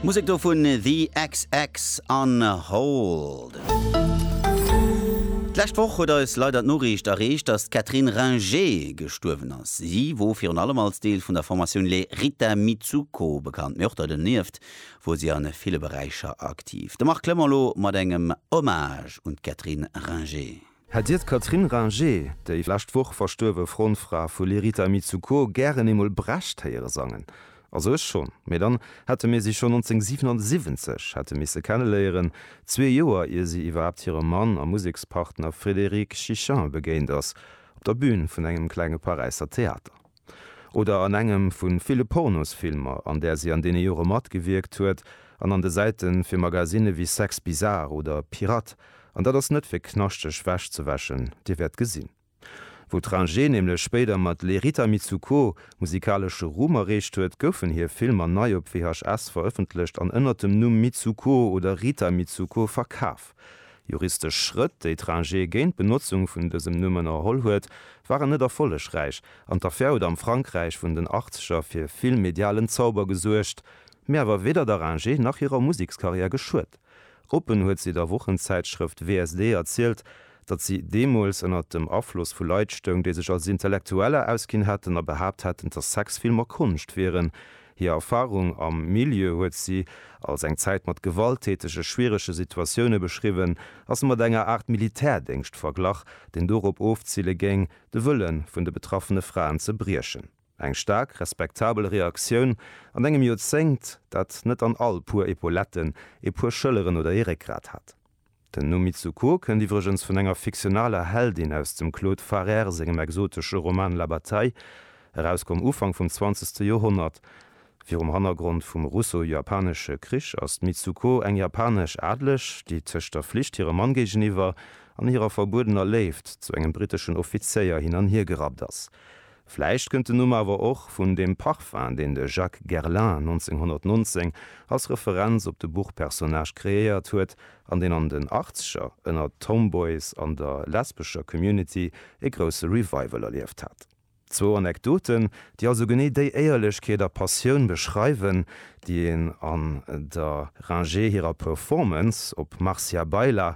Musek do vun The xx an Hold. D'lescht Woch huet eis leider d'Noriicht erreecht, dass d'Catherine Ringer gestuerwen ass. Si wor virun allem als Deel vun der Formatioun Les Rita Mitsouko bekannt, mee och donieft wor si a ville Beräicher aktiv. De Marc Clement elo mat engem Hommage un d'Catherine Ringer. Hätt Dir d'Catherine Ringer, déi lescht Woch verstuerwe Frontfra vu Lerita Mitsuko, gären eemol Brecht héiere sangen? Also ech schonn. Mee dann hätte mir si schonn 1977 hätte misse kenneléieren, zwee Joer ier si iwwerhaapt hirem Mann a Musekspartner Frédéric Chichin begéint ass, op der Bün vun engem klenge Paräisser Theater. oder an engem vu ville Pornosfilmer, an där si an deene Jore matgewierkt huet, an an de Säite fir Magasinne wéi Sex Bizarre oder Pirate, an dat ass net fir knaschteg Wäsch ze wäschen, Dir wäert gesinn, wou d'Ringe nämlech spéider mat Les Rita Mitsouko musikalesche Ruhm erreecht huet, goufen hir Filmer nei op VHS verëffentlecht an ënnert dem Numm Mitsouko oder Rita Mitsouko verkaf. Juristesch Schrëtt, déi d'Rangé géint d'Benotzung vun dësem Numm ënnerholl huet, waren net erfollegräich an d'Affär huet am Frankräich vun den Achtzeger fir vill medialen Zauber gesuergt, mee awer weder der Rangé nach hirer Musekskarriär geschuet. Oppen huet si der Wochenzäitschrëft WSD erzielt, datt si deemools ënner dem Afloss vu Leit stoung, déi sech als Intellektueller ausginn hätten a behaapt hätten, datt Sexfilmer Konscht wieren. Hir Erfarung am Milieu huet si als eng Zäit mat gewalttätege, schwierege Situatioune beschriwwen a se mat enger Aart Militärdéngscht verglach, deen dorop ofzile géing, de Wëlle vun de betraffene Fraen ze briechen. Eng staark respektabel Reaktioun an engem Joerzéngt, dat net an all puer Epauletten e puer Schëlleren oder ee Réckgrat hat. Den Numm Mitsuko kënnt iwwregens vun enger fiktionaler Heldin aus dem Claude Farrère sengem exotesche Roman La Bataille, erauskomm Ufank vum zwanzegste Joerhonnert. Virum Hannergrond vum Russo-Japanesche Krich ass d'Mitsuko eng japanesch Adeleg, déi tëscht der Flicht hirem Mann géigeniwwer an hirer verbuedener Léift zu engem briteschen Offizéier hin an hier gerappt ass. Vläicht kënnt den Numm awer och vun dem Parfum, deen de Jacques Guerlain 1919 als Referenz op de Buchpersonnage kreéiert huet an deen an den Achtzeger ënner d'Tomboys an der lesbescher Community e grousse Revival erlieft hat. Zwou Anekdoten, déi also genee déi Éierlechkeet a Passioun beschreiwen, déi een an der Ringe hirer Performance op Marcia Baila